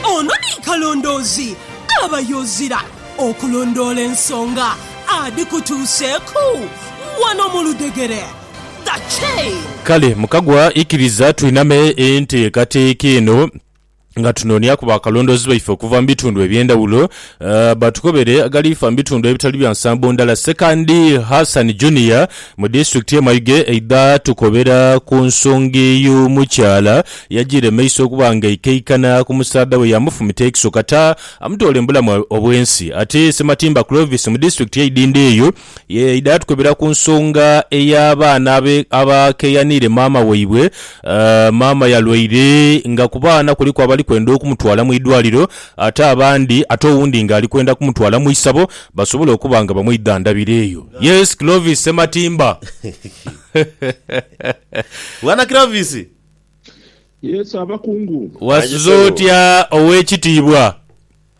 Ono ni kalondoozi aba yozira okulondoola ensonga adhikutuuseeku wano mu ludhegere. The Chain. Kale mukagwa ikiriza twiname ente kati kiino nga tunonyaku ba kalondoozi baife okuva mu bitundu ebyendawulo Batukobere agali fa mu bitundu ebitali bya nsambo ndala. Sekandi Hassan Junior mu disitulikiti ye Mayuge aidha tukobera ku nsonga eyo mukyala yajiire maiso okuba nga aikaikana ku musaadha we yamufumita ekiso kata amutoola embulamu obwensi. Ate Sematimba Clovis mu disitulikiti ye Idindho eyo Yaidha yatukebera ku nsonga ey'abaana abe abakeeyaniire maama waibwe. Maama yalwaire nga ku baana kuliku abali kwenda okumutwala mu idwaliro ate abandi ate owundi ng'ali kwenda kumutwala mu isabo basobole okuba nga bamwidhandhabira eyo. Yes Clovis Ssematimba. Bwana Clovis. Yes abakungu. Wasuze otya ow'ekitiibwa?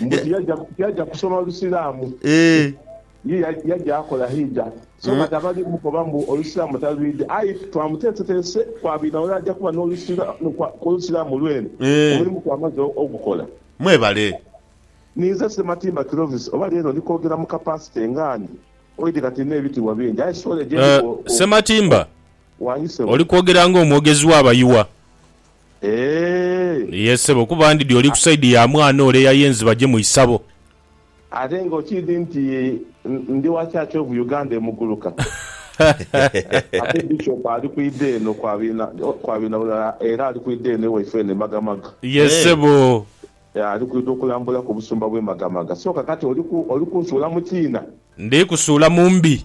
mbu Yeah. tiyaja tiyaja kusoma Lusiraamu Eeh. ye ya- yaja akola hijja so kati abali mukoba mbu Olusiraamu talwidha aye twamuteeseteese kwabwidha wala aja kuba n'olusira kwa kw'Olusiraamu lwene Eeh. omulimu kwamaze o- ogukola. Mwebale. Ninze Ssematimba Clovis oba leero ndi kwogera mu capacity nga ani? Oidhi kati ndina ebitiibwa bingi aye sure gyendi Eh, bwo- Ssematimba, Wangi ssebo. oli kwogera ng'omwogezi w'abayiwa. Eeh! Ye sebo kuba ndidhi oli ku side ya mwana ole eyayenzi baje mu isabo. Ate nga okiidhi nti ndi wa church of Uganda emuguluka. Ate bishop ali kwidha eno kwa binabulala era ali kwidha eno ewaife eno e magamaga. Ye sebo. Eeh ali kwidha okulambula ku busumba bwe magamaga. So kakati oli kunsuula mu kiina? Ndi kusuula mu mbi.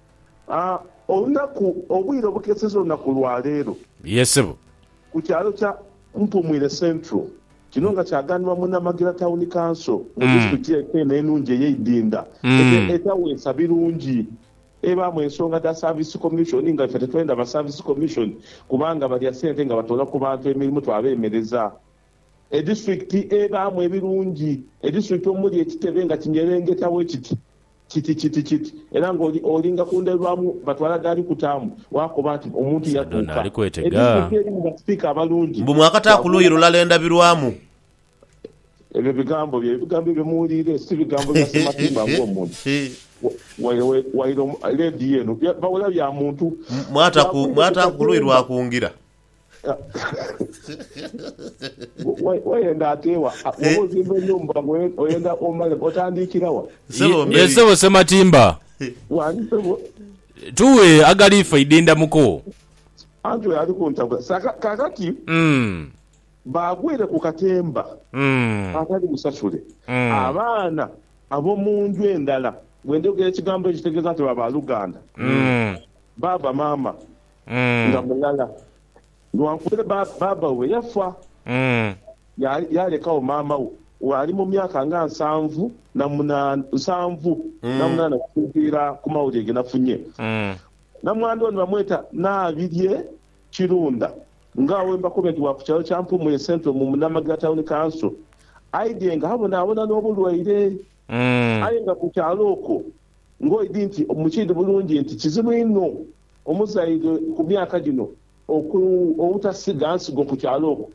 Olunaku, obwire obukeseza olunaku lwa leero. Yee ssebo. Ku kyalo kya Mpumwire Central. Kino nga kyaganibwa munamagira Town Council mu disitulikiti yaife eno enungi eye Idinda ete etaweesa birungi. Ebaamu ensonga dha service commission nga ife tetwenda ba service commission kubanga balya sente nga batoola ku bantu emirimu twabemereza. Edisiturikiti ebaamu ebirungi, edisiturikiti omuli ekitebe nga kinyerengeta bwe kiti, kiti, kiti, kiti, era nga oli, olinga ku ndhabilwamu, batwala gaali kutaamu, waakoba nti, Omuntu Sadona yakuuka. ali kwetega. Edisiturikiti erimu basipiika abalungi, Mbu mwakata ku luuyi lulala endabirwamu. Ebyo bigambo bye bigambo ebyo muwuliire, si bigambo bya simatiimba ng'omuntu. Waire, waire, waire omu, leediyo eno, bya, bawula bya muntu. Mwata ku, mwata ku luuyi lwa kungira. Wayenda ate wa? Bwoba ozimba enhumba oyenda omale otandikira wa? Ye sebo Sematimba. Wani sebo. Tughe agali ifa idinda muko. Anti oyo ali kuntabula saka kakati bagwire ku katemba akali musasule abaana abomunju endala. Bwendhogera ekigambo ekyo kitegeza nti baba luganda, baaba, maama. nga mulala. Lwankubele baaba we yafa, yaalekagho maama we bw'ali mu myaka nga nsanvu na munaana, nsanvu na munaana okusinziira ku mawulire ge nafunye. Namwandu ono bamweta Nabirye Kirunda nga we mbakobye nti wa ku kyalo kya Mpumuye Central mu Munamagira Town Council aidhye nga abonabona n'obulwaire aye nga ku kyalo okwo ng'oidhi nti mukiidhi bulungi nti kizibu inho Omuzaighe ku myaka gino oku obutasiga nsigo ku kyalo okwo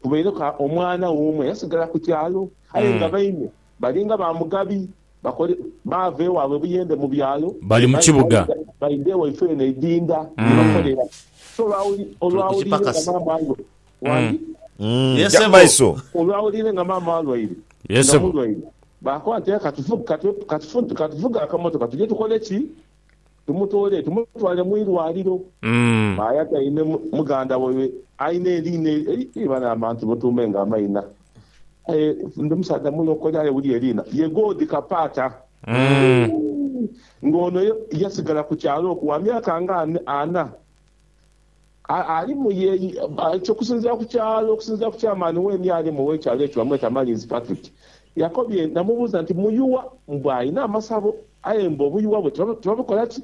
kubaireku omwana we omu eyasigala ku kyalo aye nga baine balinga ba Mugabi bakole baava ewaabwe Buyende mu byalo Bali mu kibuga. baidha ewaifo eno e Idinda ye bakolera. So olwawuli Tuli ku olwawuliire nga kipakasi. maama alwa wange Umm Yes, ja mu ssebo. maiso. olwawuliire nga maama alwaire Yes, nga ssebo. mulwaire baakoba nti aye katufu katu katufu katufuge akamotoka tuje tukole ki? Tumutoole tumutwale mu irwaliro. Maaya taine muganda waibwe alina eriina eii bane abantu mutuume nga amaina aye ndi musaadha mulokole aye wulira eriina ye God Kapaata ooh nga ono yasigala ku kyalo okwo wa myaka nga ana. Alimu ye, ekyo okusinziira ku kyalo, okusinziira ku chairman weeni alimu ow'ekyalo ekyo bamweta Malinzi Patrick. Yakobye namubuuza nti, Muyuwa mbu alina amasabo aye mbu obuyuwa bwe tibabukola ki?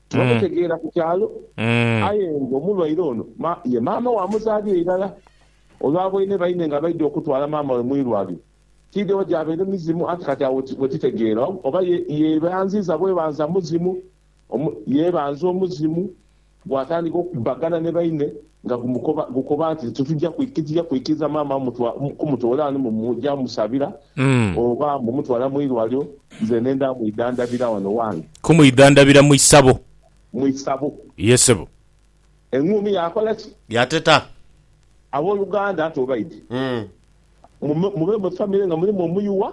Tibabutegeera ku kyalo. Aye nga omulwaire ono ye maama we amuzaalira irala. Olwa boine baine nga baidha okutwala maama we mu irwaliro, tiidhe oba gyabaire mizimu anti kati agho we titegeera oba ye yeebanziiza bwebanza muzimu Omu yeebanza omuzimu, bw'atandika okubbagana ni baine nga gumukoba gukoba nti, Titugya titugya kwikiriza maama mutwa kumutoola ghano mbu muja musabira oba mbu mutwala mu irwaliro, nzene nda mwidhandhabira wano wange. Kumwidhandhabira mu isabo. Mu isabo. Ye ssebo. Eng'uumi yaakola ki? Yaateta. Aboluganda, nti obaidhi, mube mu famire nga mulimu omuyuwa.